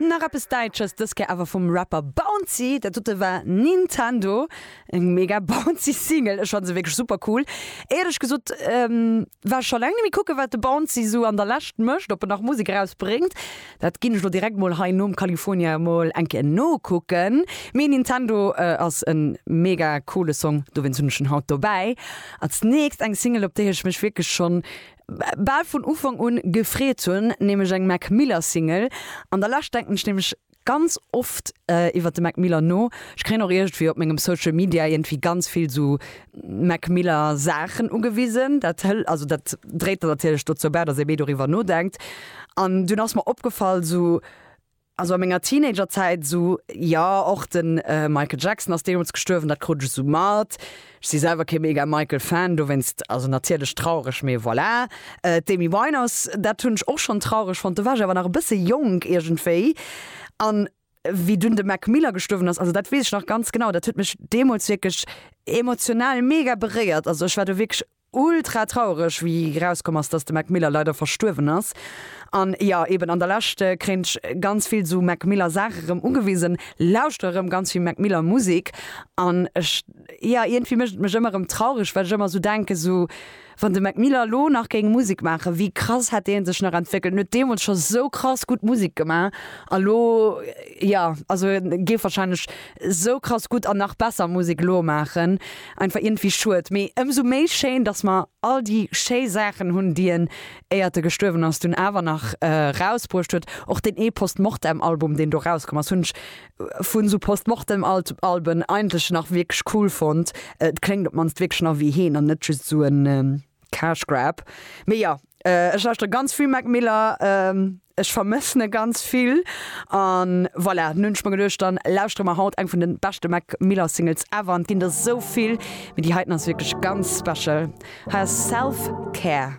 Nach eppes Däitsches, dës Kéier awer vum Rapper Bouncy. Dat dote war Nintendo. Eng mega bouncy Single, ech fannt se wierklech super cool. Éierlech gesot war ech scho laang net méi kucken, wat de Bouncy esou an der Lescht mécht, ob en nach Musek erausbréngt. Dat ginn ech lo direkt mol hei nom California emol eng Kéier nokucken. Mee Nintendo ass en mega coole Song, dowéinst hunn ech en haut dobäi. Als nächst eng Single op déi ech mech wierklech schonn bal vun Ufank un gefreet hunn, nämlech eng Mac Miller Single. An der Lescht denken ech nämlech ganz oft iwwert de Mac Miller no. Ech kréien och iergendwéi op mengem Social Media iergendwéi ganz vill sou Mac Miller Saachen ugewisen. Dat hël, also dat dréit dann natierlech dozou bäi, datt ee méi doriwwer nodenkt. An dunn ass mer opgefall, esou, also a menger Teenagerzäit, esou, jo, och de Michael Jackson ass deemools gestuerwen, dat krut ech esou mat. Ech si selwer kee mega Michael-Fan, dowéinst, also natierlech traureg, mee voilà. D'Amy Winehouse, dat hunn ech och schonn traureg fonnt, do war ech awer nach e bësse jonk iergendwéi. An Wéi dunn de Mac Miller gestuerwen ass, also dat weess ech nach ganz genau, dat huet mech deemools wierklech emotional mega beréiert. Also ech war do wierklech ultra trauereg, wéi erauskomm ass, dass de Mac Miller leider verstuerwen ass. An jo, eben an der Lescht kréint ech ganz vill esou Mac Miller Saache erëm ugewisen, lauschter erëm ganz vill Mac Miller Musek an ech, jo, iergendwéi mécht et mech ëmmer erëm traureg, well ech ëmmer esou denken, esou Wann de Mac Miller lo nach géing Musek maachen, wéi krass hätt dee sech nach entwéckelt? En huet deemools scho sou krass gutt Musek gemaach a lo, jo, also en géif warscheinlech sou krass gutt an nach besser Musek elo maachen. Einfach iergendwéi schued, mee ëmsou méi schéin, dass mer all déi schéi Saachen hunn, déi en, éiert e gestuerwen ass, dunn awer nach rausbruecht huet. Och deen ee Post-Mortem-Album, deen do rauskomm ass, hunn ech vun esou Postmortem Alben eigentlech nach wierklech cool fonnt. Et kléngt op d'mannst wierklech nach ewéi heen an net just esou en Cash Grab. Mee jo, ech lauschteren ganz vill Mac Miller, ech vermëssen e ganz vill an voilà, nun hunn ech mer geduecht dann lauschteren mer haut eng vun den beschten Mac Miller Singles ever an et ginn der esou vill, mee déi heiten ass wierklech ganz special. Hei ass Self Care.